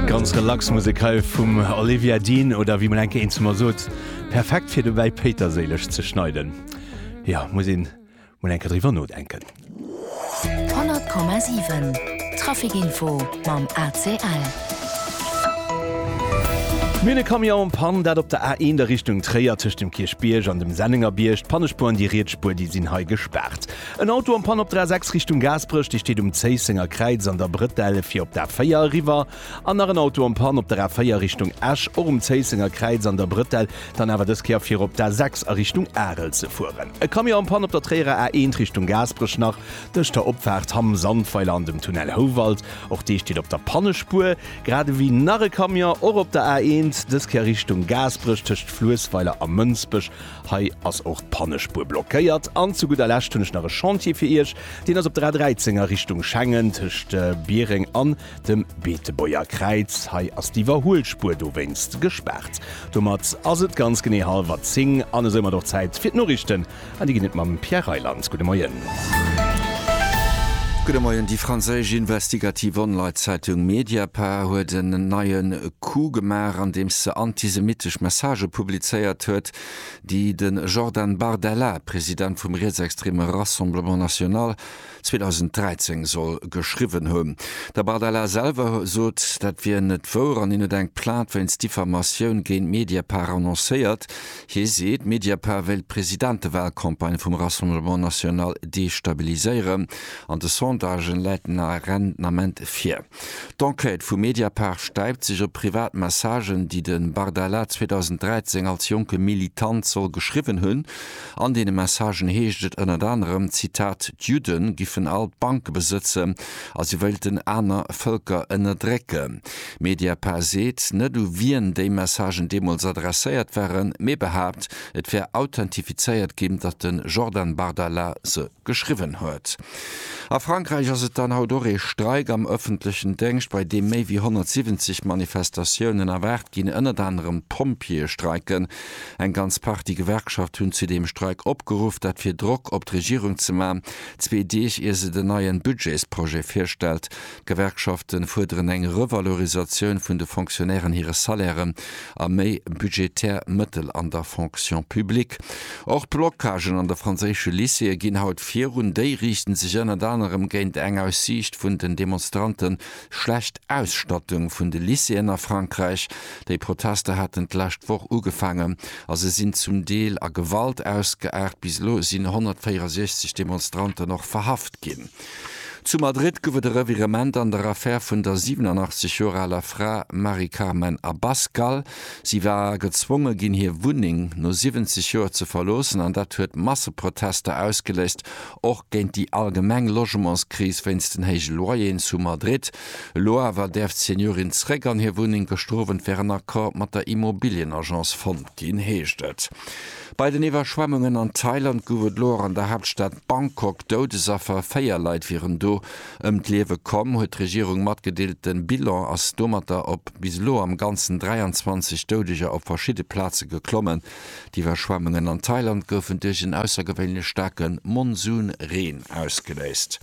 Ganz relax Musek hei vum Olivia Dean oder wéi mol enke eenzemer sot, perfekt fir dobäi Péiterséileg ze schneiden. Jo, muss een mol enke driwwer nodenken. 100,7 Trafikinfo mam ACL. Mir hunn e Camion en Panne, dat op der A1 a Richtung Tréier, tëscht dem Kierchbierg an dem Sennengerbierg. D'Pannespuer an déi riets Spuer, déi sinn hei gespaart. En Auto am Panne op der A6 Richtung Gaasperech, Dir steet um Zéissenger Kräiz an der Brëtell fir op d'A4 eriwwer. An nach en Auto am Panne op der A4 Richtung Esch, och um Zéissenger Kräiz an der Brëtell, dann awer dës Kéier fir op d'A6 a Richtung Arel ze fueren. E Camion am Panne op der Tréierer A1 Richtung Gaasperech, nach tëscht der Opfaart Hamm Sandweiler an dem Tunnel Houwald, och dee steet op der Pannespuer. Grad ewéi nach e Camion, och op der A1, dës Kéier Richtung Gaasperech, tëscht Fluessweiler a Mënsbech Hei ass och d'Pannespuer blockéiert. An zu gudder Lescht hunn ech nach e Chantier fir Iech. Deen ass op der A 13 a Richtung Schengen tëscht Biereng an dem Beetebuerger Kräiz. Hei ass d'Iwwerhuelspuer dowéinst gespaart. Domat ass et ganz genee hallwer 10 an esoumat och Zäit fir d'Noriichten. An déi ginn et mam Pierre Reyland. Gudde Moien. Gudde Moien, Déi franséisch investigativ Online-Zeitung Mediapart huet en neie Coup gemaach, andeems se antisemittesch Messagë publizéiert huet, déi de Jordan Bardella, President vum rietsextreme Rassemblement National, 2013 soll geschriwwen hunn. De Bardella selwer sot, dat wier net wouer an hien huet eng Plainte wéinst Diffamatioun géint Mediapart annoncéiert. Hie seet, Mediapart wéilt d'Presidentewahlcampagne vum Rassemblement National destabiliséieren an de Sondagen läit den Arendement vir. D'Enquête vu Mediapart stäipt sech op privat Messagen, déi de Bardella 2013 als jonke Militant soll geschriwwen hunn. An deene Messagen heescht et ënnert anerem, Zitat, D'Judde giffen all d'Banke besëtzen a si wéilten aner Vëlker ënnerdrécken. Mediapart seet net u wien déi Messagen deemools adresséiert waren, mee behaapt, et wär authentifizéiert ginn, datt de Jordan Bardella se geschriwwen huet. A Frankräich ass et dann haut och ee Streik am ëffentlechen Déngscht, bei deem méi wéi 170 Manifestatiounen erwaart ginn. Ënnert anerem d'Pompjeeë streiken. Eng ganz Partie Gewerkschaft hunn zu deem Streik opgeruff, dat fir Drock op d'Regierung ze man, zwee Deeg ier se den neien Budgetsprojet virstellt. D'Gewerkschafte fuerderen eng Revalorisatioun vun de Fonctionnairen hire Salairen a méi budgetär Mëttel an der Fonction publique. Och Blocagen an de franséische Lycéeë ginn haut virun. Déi riichten sech ënnert anerem géint eng aus Siicht vun den Demonstrante schlecht Ausstattung vun de Lycéeën a Frankräich. Déi Protester haten d'lescht Woch ugefaangen a se sinn zum Deel a Gewalt ausgeaart. Bis elo sinn 164 Demonstranten och verhaft ginn. Zu Madrid gouf et e Revirement an der Affär vun der 87 Joer aler Fra Mari Carmen Abascal. Si war gezwonge ginn, hir Wunneng no 70 Joer ze verloossen an dat huet Masseprotester ausgeléist, och géint déi allgemeng Logementskris wéinst den héije Loyeren zu Madrid. Elo awer däerf d'Seniorin zréck an hir Wunneng. Gestrowent wär en Accord mat der Immobilienagence fonnt ginn, heescht et. Bei den Iwwerschwemmungen an Thailand gouf et elo och an der Haaptstad Bangkok Doudesaffer. Véier Leit wieren do ëm d'Liewe komm, huet d'Regierung matgedeelt. De Bilan ass domatter op bis elo am Ganzen 23 Doudeger op verschidde Plaze geklommen. D'Iwwerschwemmungen an Thailand goufen duerch en aussergewéinlech staarke Monsunreen ausgeléist.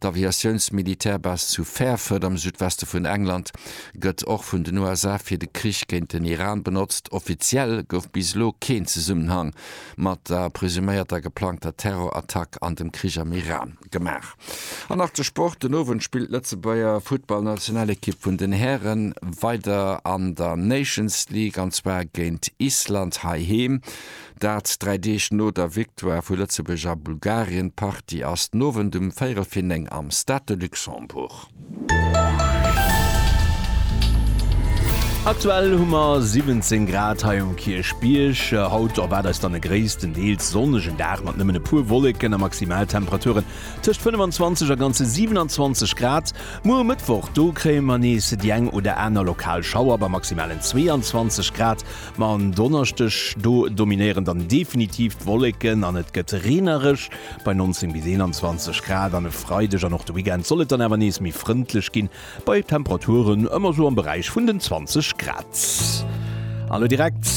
D'Aviatiounsmilitärbase zu Fairford am Südweste vun England gëtt och vun den USA fir de Krich géint den Iran benotzt. Offiziell gouf bis elo keen Zesummenhang mat der presuméierter geplangter Terrorattack an dem Krich am Iran gemaach. An nach de Sport, Den Owend spillt d'Lëtzebuerger Futtballnationalekipp vun den Hären weider an der Nations League, an zwar géint Island heiheem. Dat dräi Deeg no der Victoire vu Lëtzebuerg a Bulgarien. D'Partie ass den Owend um véierel fir néng am Stade de Luxembourg. Aktuell hu mer 17 Grad hei um Kierchbierg. Haut erwaart eis dann e gréisstendeels sonnegen Dag mat nëmmen e puer Wolleken a Maximaltemperaturen tëscht 25 a ganze 27 Grad. Muer um Mëttwoch, do kréie mer nees déi eng oder aner lokal Schauer bei maximalen 22 Grad. Ma en Donneschdeg, do dominéieren dann definitiv d'Wolleken an et gëtt reenereg, bei 19 bis 21 Grad, an e Freideg an och de Weekend soll et dann awer nees méi frëndlech ginn, bei Temperaturen ëmmer sou am Beräich vun den 20 Grad. An elo direkt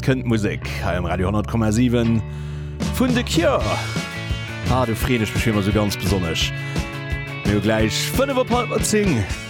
kënnt d'Musek hei um Radio 100,7 vun The Cure. Ah, do freen ech mech wéi ëmmer sou ganz besonnesch. Mir hu gläich 5 op hallwer 10.